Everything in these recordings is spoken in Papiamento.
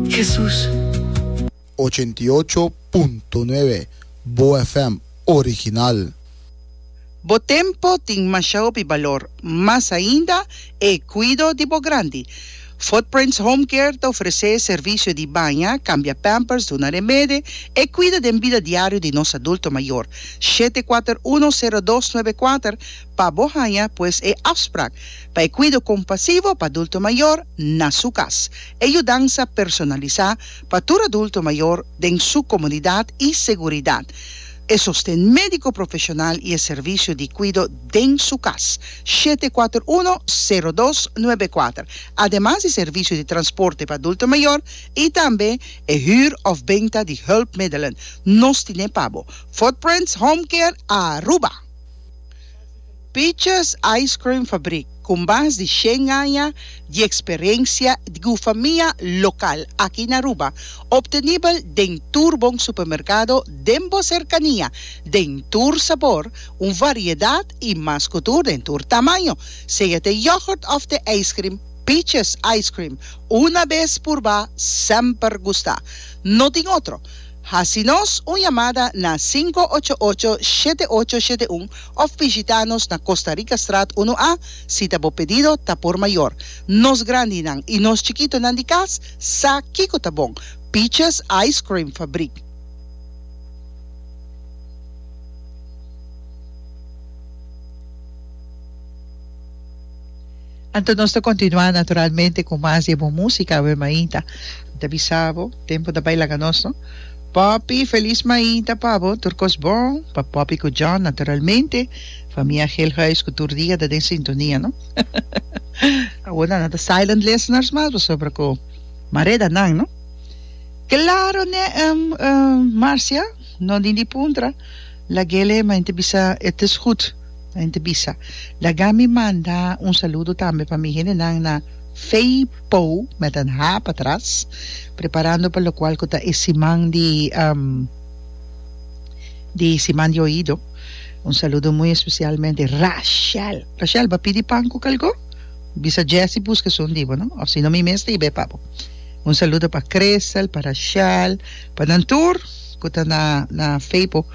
Jesus. Ochenta i ocho punto nuebe, Boa FM original. Bo tempo tin masha hopi balor, mas ainda e cuido di bo grandi. Footprints Home Care ta ofrece servicio di baña, cambia pampers, duna remede, e cuido den bida diario di nos adulto mayor. Shete kuater uno sero dos nuebe kuater pa bo haña pues e afsprak pa e kuido kompasivo pa adulto mayor na su kas, e yudansa personalisá pa tur adulto mayor den su komodidat i seguridat, e sosten médiko profeshonal i e servisio di kuido den su kas, shete kuater uno, sero dos, nuebe kuater, ademas di servisio di transporte pa adulto mayor i tambe e hür òf benta di hùlpmiddelen nos tine pa bo, Footprints Home Care, Aruba. Peaches Ice Cream Fabrik, ku mas di shen aña di eksperensia di gufamia lokal aki na Aruba, optenibel den tur bon supermerkado den bo serkania, den tur sabor, un variedat i mas ku tur den tur tamaño. Sea te yogurt òf te ijskrim, Peaches Ice Cream, una bes purba, semper gusta. No tin otro. Hasi nos un yamada na sinku ocho ocho shete ocho shete un of bishita nos na Costa Rica Straat unu A si ta bo pedido ta por mayor. Nos grandinan y nos chikitonan di cas sa kico ta bon, Peaches Ice Cream Fabriek. Anto nos ta kontinuá naturalmente ku mas di e bon músika, Ave Mainta. Ta bisa bo, tempu ta bai laga nos, no? Poppy, Feliz Mainta pa bo, tur kos bon pa Poppy ku John naturalmente, famia Geelhuis ku tur dia ta den sintonia, no? Awor nan ta silent listeners mas pasobra ku mareda nan, no? Klaro ne, Marcia, no dindi puntra, lagele, ma N ta bisa, et is goed. Hende bisa, Laga mi manda un saludo tambe pa mi hendenan na Fei Po, met an ha patras, preparando pa lokual ku ta e siman di di siman di oido. Un saludo muy especialmente Rashel. Rashel, bo a pidi pan ku kalgó? Bisa Jessy buska esun di bo, no? Òf sino mi mes ta yeb'e pa bo. Un saludo pa Crystal, pa Rashel, pa nan tur ku ta na na Fei Po.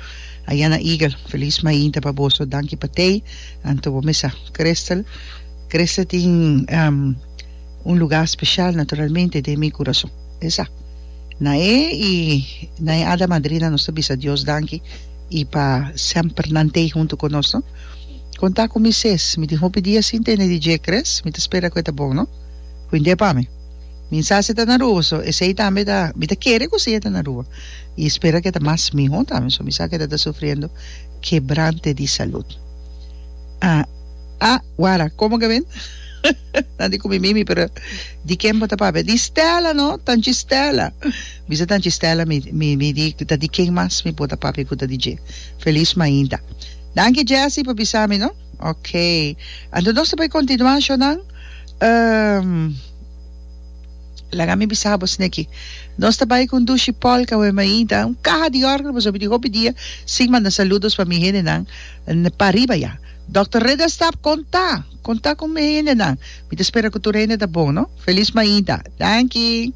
Ayana Eagle, Feliz mainta pa boso, danki pa tei. Anto bo mesa Crystal. Crystal tin un luga special naturalmente den mi curason. Esa na e y na e ada madrina nos ta bisa Dios danki y pa semper nan tei hunto cu nos no. Conta cu mi ses, mi tin hopi dia sin tene di dje Chris, mi ta spera cu e ta bon no. Cu indie pa mi. Mi sa si e ta na Aruba, so esey tambe ta, mi ta kere cu si e ta na Aruba. I spera ke ta mas mihó tambe, so mi sa ke ta ta sufriendo kebrante di salud. Ah, ah, wara, komo ke men? Nan di ku mi, Mimi, pero di ken bo ta papia? Di Stella no, tanchi Stella. Bisa tanchi Stella mi, mi, mi di ta di ken mas mi por ta papia ku ta di dje. Felis mainta. Danki Jessie pa bisa mi no. Oké. Anto nos ta por kontinuá, shornan? Ehm. Laga mi bisa bo Sneki. Nos ta bai cu un dushi polka we mainta un caha di orgel pasobra di hopi dia sin manda saludos pa mi hendenan pa ariba ya. Dòkter Reda Stap conta, conta cu mi hendenan. Mi ta spera cu tur hende ta bon no. Feliz mainta. Danki.